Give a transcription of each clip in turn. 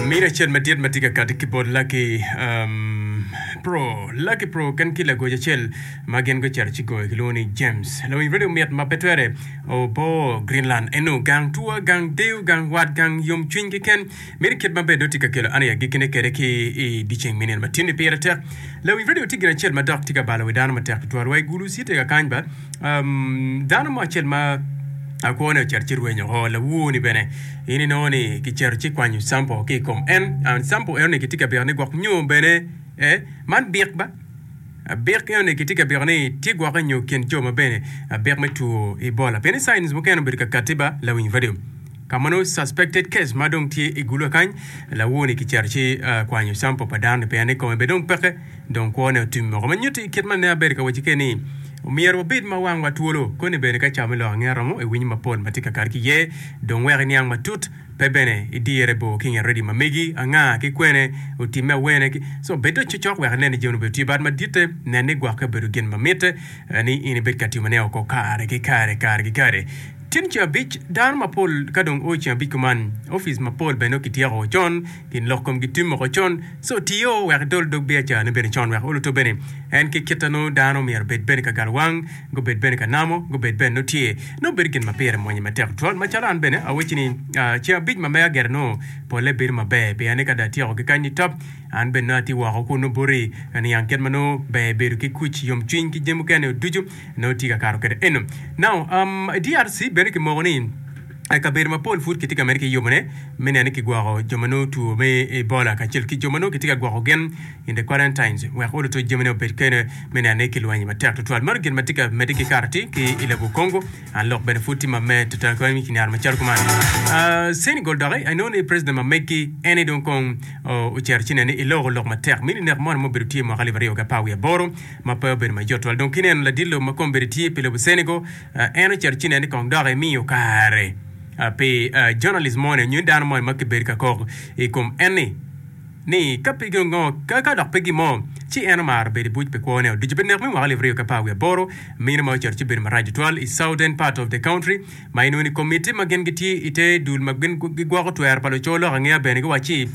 Mini acel madit ma tye ka kati ki bot Lucky um, Pro. Lucky Pro oken ki lagoc acel ma gin gucito ci goyo kilwongo ni James. Lawiny redio mit ma pe twere obo Greenland eno gang tua, gang deyo, gang wat, gang yomcwiny keken. Mini kit ma bene dong tye ka kelo an i agikkine kwede ki i dyeceng me nino ma tye-ni pire tek. Lawiny redio tye gin acel ma dok tye ka balo wi dano matek tutwal. Wa i Gulu, Citega kany ba, Dano mo acel ma akwone ocito ci rwenyo oko, lawuo-ni bene in inongo ni kicito ci kwanyo campol ki i kom en. Campol enoni kitye ka bito ni gwok nyo bene man bik ba? Bik enoni kitye ka bito ni tye gwokke nyo kin jo ma bene bik me two Ebola. Pien ni signs mukene obedo ka katti ba lawiny bade. Ka ma nongo suspected case ma dong tye i gulwa kany, lawuo-ni kicito ci kwanyo campol pa dano-ni pien ni kome bene dong peke. Dong kwone otim moko me nyutti kit ma ne abedo ka wacci keni. Omyero wabed ma wangwa twolo koni bene ka cawa me lok ange romo iwinyo mapol ma tye ka kato ki iye, dong wek iniang matut, pe bene idirre bor ki nge redio ma megi, anga, ki kwene, otimme awene ki. Co, bed dong cocok wek inen ni jami-ni obedo tye bad maditte. Nen ni gwokke obedo gin ma mitte ni in ibed ka timone oko kare ki kare, kare ki kare. Tyen ceng abic, dano mapol ka dong oo ceng abic kuman, opic mapol bene nongo kityeko con. gin lok komgi tim woko con, ci otiyo wek edol dog biacarane bene con wek olo tobbe ni en ki kit a nongo dano myero obed bene ka galowang, gubed bene ka namo, gubed bene nongo tye. Nongo bedo gin ma pire mwanye matek tutwal. Macalo an bene awecci ni ceng abic ma mega gire nongo polle bedo maber pien ni ka dong atyeko ki kany nitop, an bene nongo atye woko kun nongo boti niang kit ma nongo ber bedo ki kuc, yomcwiny ki jami mukene-ni ducu nongo atye ka kato kwede eno. Now, um, i DRC bene kimoko ni. I kabedo mapol pud kitye ka medde ki yubone me neno ni kigwoko jo ma nongo two me Ebola kacel ki jo ma nongo kitye ka gwoko gin in the quarantines wek ot otuc jamine obed kene me neno ni kilweny matek tutwal. Mano gin ma tye ka medde ki kato atir ki i lobo Congo. Ah, lok bene pud tye ma med tutwal kwan ki nyaro macalo kuman. Ah, Senegal doki I know ni president ma meggi en aye dong kong oh, ocito ci neno ni iloko lok matek mini nek mono ma obedo tye mwaka alip aryo ki apar wiye aboro ma pe obedo mayot twal. Dong kineno ladit lobo ma kong bedi tye pi lobo Senegal En ocito ci neni kong dok imiyo kare pi journalist moni nyo dano moni ma kibedo ka kok i kom enni ni ka pe gin ngo ka dok pe gin mo ci en omaro bedo i buc pi kwone oducu pi nek me mwaka alip aryo ki apar wiye aboro mino ma ocito ci bedo marac tutwal i southern part of the country ma inongo ni komiti ma gin gitye i te dul ma gin gigwoko twero pa luco lok angeya bene giwaco ci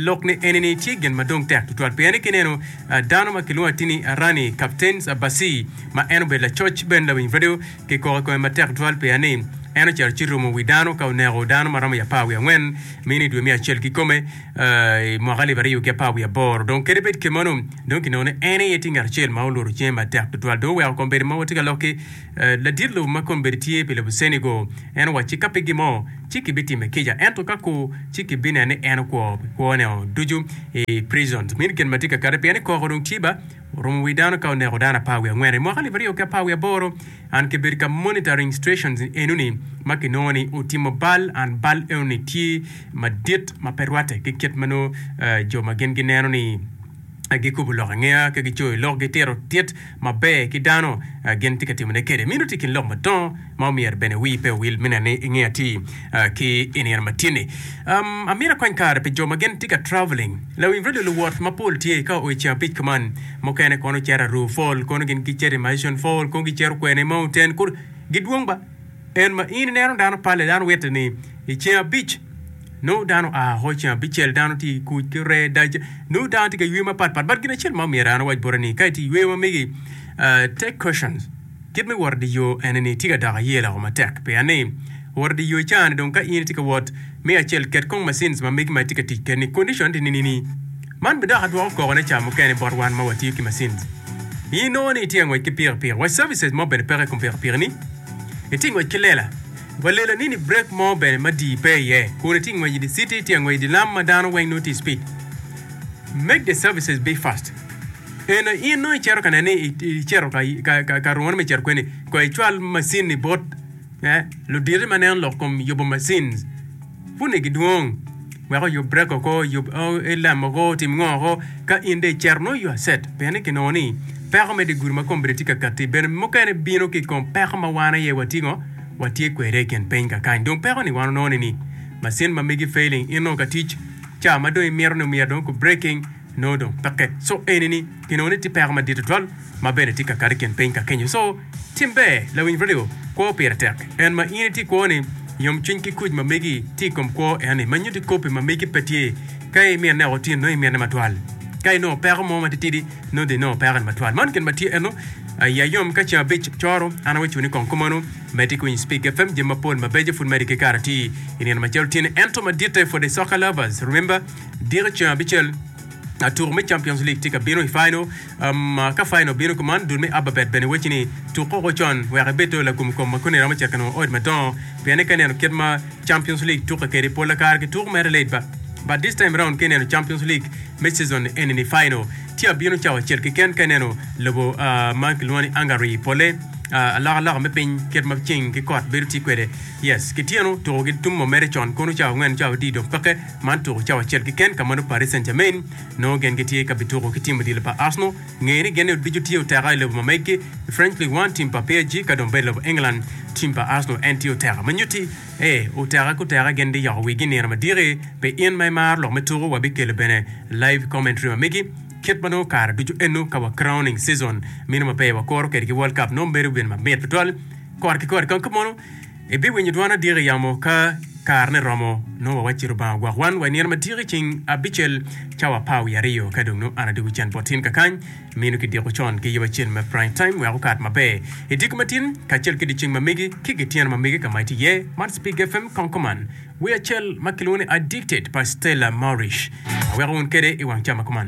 lok ni eni ni tye gin ma dong tek tutwal pien ni kineno dano ma kilwongo atini arani captains abasi ma en obedo lacoc ci bene lawiny redio kikoko i kome matek tutwal peya ni en ocito ci romo wi dano ka oneko dano ma romo i apar wiye angwen mi ni i dwe me acel kikome i mwaka alip aryo ki apar wiye aboro dong kadi bed kemanu dong kinongo ni en aye tye ngat acel ma olworo cinge matek tutwal dong oweko kombeddi mogo tye ka loki ladit lobo ma kombeddi tye pi lobo ceni go en owacci ci ka pe gin mo ci kibitime kica ento ka ku ci kibineno ni en okwo pi kwone-o ducu i prisons mi ni gin ma tye ka kati peya ni koko dong tye ba Orumo wi dano ka oneko dano apar wiye angwen. I mwaka alip aryo ki apar wiye aboro, an ki bedo ka monitoring stations enoni ma ki nongo ni otimo bal, and bal enoni tye madit ma pe rwate ki kit ma nongo jo ma gin gineno ni gi kobo lok angeya ki gi coyo lok gi tito tit maber ki dano gin tye ka timone kede. Meno tye ikin lok madongo. ma omyero bene wii pe owil mine ni inge ati ki i nino ma tye ni. Um, amyero akony kare pi jo ma gin tye ka traveling. Lawiny radio luwot ma pol tye ka o i ceng abic kuman. Mukene kono cito Aruu Fall, kono gin gi cito i Mission Fall, kono gi cito kwene i Mountain, kur gi dwong ba. En ma in ineno dano pale dano witte ni i ceng abic nongo dano a ho ceng abicel dano tye kuc ki ree dac nongo dano tye ka yweyo ma pat pat but gin acel ma omyero an awac bote ni ka itye yweyo ma megi uh, take cautions. Kit me wot idye yo ene ni tye ka dok aye loko matek pia ni wot idye yo cani dong ka in itye ka wot me acel ket kong macines ma megi ma itye ka tic ked ni condition di nini ni man bi dok adwoko koko ne ca mukene bot wan ma watiyo ki macines in inongo ni itye angwec ki piki piki wa services mo bene peke ikom piki piki ni itye ngwec ki lela wa lela ni ni break mo bene ma dii pe iye kun itye ngwec idye city itye angwec idye lam ma dano weng nongo tye speed make the services be fast. Eno in nongo icito ka nene ni icito ka rungone me cito kweni, kong icwal macin-ni bot luditi ma neno lok kom yubo macin puni gidwong wek oyub brek oko, oyub lam oko, otim ngo oko. Ka in dong icito nongo you are set pien kinongo ni peko me diguri ma kombeddi tye ka katti bene mukene bino ki kom peko ma wan aye watye ngo, watye kwede i kin piny kakany. Dong peko ni wan onongo ni macin ma megi failing in nongo ka tic ca ma dong imito ni myero dong ku breaking. nongo dong peke. Co eni ni pi nongo ni tye peko madit tutwal ma bene tye ka kati kin piny ka kenyo. Co tim ber lawiny radio kwo pire tek en ma in itye kwo ni yom cwiny ki kuc ma megi tye i kom kwo en ni ma nyuti kopi ma megi pe tye ka i mine o tino nongo i mine matwal ka i nongo peko mo ma tye tidi nongo dong i nongo peko ni matwal man kin ma tye eno ayi ayom ka ceng abic coro an awe cuni kong kumanu me tye ki winyo speak fm jami mapol mabeco food medi ki kara tye i nino macalo tye ni ento maditte for the soccer lovers remember Diro ceng abicel, tuko me Champions League tye ka bino i final. Um, ka final bino kuman, dul me Ababet bene weci ni tuk koko con wek ibed to lagom kom ma koni romo cito ka nongo odi madongo, pien eka ineno kit ma Champions League tukke kede pol akara ki tuko mere late ba. But this time round ka ineno Champions League me season eni ni final tye abino cawa acel keken ka ineno lobo uh, ma kilwongo ni Hungary pole uh, aloka loka me piny kit ma ceng ki kot bedo tye kwede. Yes, kityeno tuko gi tum mo mere con kono cawa angwen cawa adi dong peke. Man tuko cawa acel keken ka ma dong Paris Saint-Germain nongo gin gitye ka bituko ki tim odilo pa Arsenal. Ngeye ni gin oducu tye oteka i lobo ma megi. I French Ligue One tim pa PSG ka dong bed i lobo England, tim pa Arsenal en tye oteka. Ma nyutti, ee, oteka ki oteka gin biyoko wigi i nino madiki. Pi in ma imaro lok me tuku, wabikelo bene live commentary ma megi kit ma nongo kare ducu eno ka wa crowning season meno maber wakuro kwede ki World Cup nongo bedo gin mamit tutwal kore ki kore kong ki mono. Ibiwinyo dwon adyek i yamo ka karene romo, nongo wawacci Lubanga ogwok wan wa i nino madyek i ceng abicel, cawa apar wiye aryo. Ka dong nongo an adwogo cen bot tin kakany, mino kidiko con ki yub acel me prime time wek okat maber i diko matin kacel ki dyeceng ma mege ki gityeno ma mege ka ma itye iye. Man Spig FM kong kuman. Wer acel ma kilwongo ni Addicted pa Stella Maurice aweko wun kede i wang cam ma kuman.